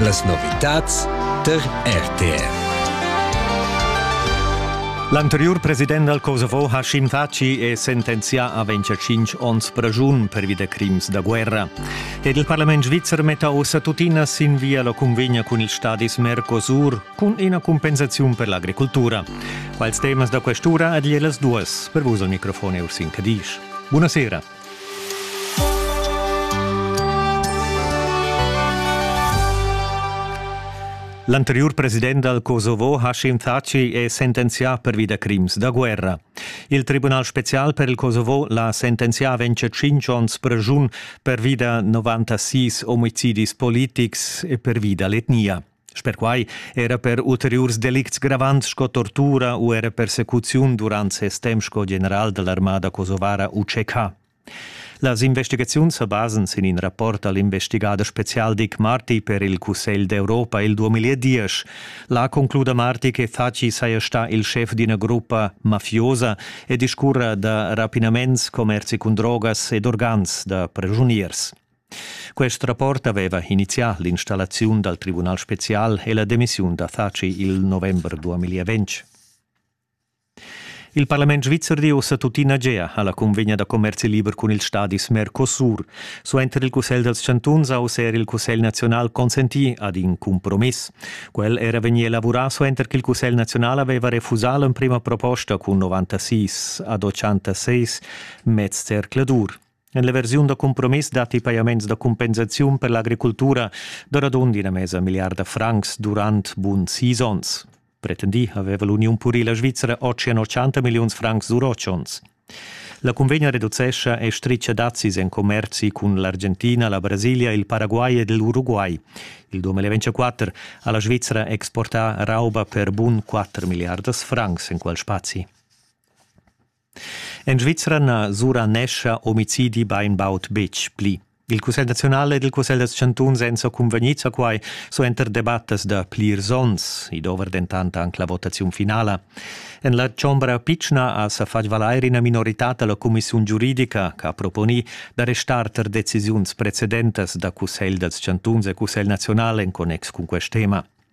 Las novitads tar RTR. L'anteriur president dal Kosovo Hashim Thaci è sentenzià a 25 onns pragiun pervi da crims da guerra. Ed il parlament svizzer metta ossa tuttina sin via la convegna cun ils stadis Mercosur cun ina compensaziun per l'agricoltura. Quals temas da questura ad las duas per vus al microfon è Ursin Cadisch. Buonasera. L'anteriur president dal Kosovo Hashim Thaci è sentenzià pervi da crims da guerra. Il Tribunal spezial per il Kosovo l'ha sentenzià ventg tschintg onns pregiun pervi da 96 omicidis politics e pervi da l'etnia. Perquai era per ulteriurs delicts gravants sco tortura u era persecuziun durant ses temp sco general dall'armada kosovara UCK. Las investigaziuns sa basan sin in rapport all'investigader special Dick Marty per il Cussegl d'Europa il 2010. Là concluda Marty che Thaci saja stà il schef d'ina gruppa mafiosa e discurra da rapinaments, commerzi cun drogas ed organs da pregiuniers. Quest rapport aveva inizià l'installaziun dal Tribunal spezial e la demissiun da Thaci il november 2020. Il parlament svizzer di ussa tuttina gea alla convegna da commerzi liber cun il stadis Mercosur. Suenter il Cussegl dals chantuns ha user il Cussegl nazional consentì ad in compromiss. Quel era vegnì elaborà suenter che il Cussegl nazional aveva refusà l'emprima proposta cun 96 ad 86 mez zercladur. En la versiun da cumpromiss datti pajaments da cumpensaziun per l'agricultura da radund ina mesa milliarda francs durant bun sis onns. Pretendì aveva l'uniun purila svizra otg 80 milliuns francs durotschons. La cunvegna reducescha e stricia dazis en commerzi cun l'Argentina, la Brasilia, il Paraguay ed l'Uruguay. Il 2024 ha la Svizra exportà rauba per bun 4 miliardas francs en quel spazi. En Svizra na suranescha omicidi bainbaud betg pli. Il Cussegl naziunal ed il Cussegl da chantuns èn sa cunvegnids a quai suenter debattas da plirs onns. I dovra dentant anc la votaziun finala. En la chombra pitschna ha sa fatg valair ina minoritad da la cumissiun giuridica che ha proponì da restar tar decisiuns precedentas da Cussegl dals chantuns e Cussegl naziunal en connex cun quest tema.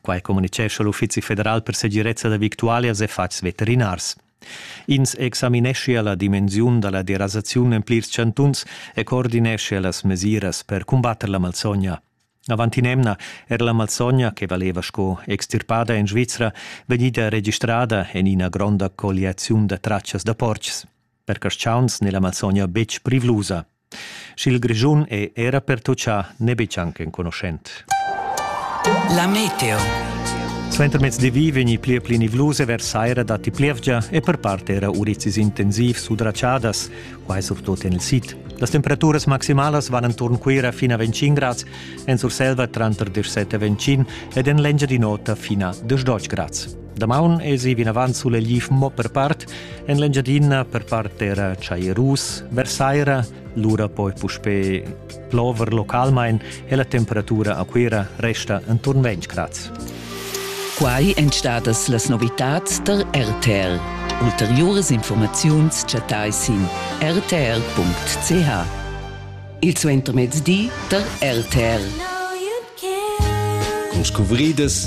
Quai communitgescha l'Uffizi federal per segirezza da victualias e fatgs veterinars. Ins examineschia la dimensiun da la derasaziun en plirs chantuns e coordineschia las mesiras per cumbatter la malsogna. Avant in'emna era la malsogna che valeva sco extirpada en Svizra vegnida registrada en ina gronda colliaziun da tratschas da portgs. Per carstgauns n'è la malsogna betg privlusa. Sch'il Grischun è era pertutgà, n'è betg anc enconuschent. La meteo. Suentermezdi vegni pli e pli nivlus e vers saira datti plievgia e per part era urizis intensiv sudratschadas, quai surtut en il sid. Las temperaturas maximalas van enturn Cuira fin a 25 grads, en Surselva tranter 17 e 25 ed en l'Engiadin'Ota fin a 12 grads. Damaun esi vinavant sulegliv mo per part, en l'Engiadina per part era chairus, versaira, lura poi puspè plover localmain e la temperatura a Cuira resta enturn 20 grads. Quai èn stadas las novitads tar RTL. Ulteriuras informaziuns chattai sin rtr.ch. Il suentermezdi tar RTL. Con scuvridas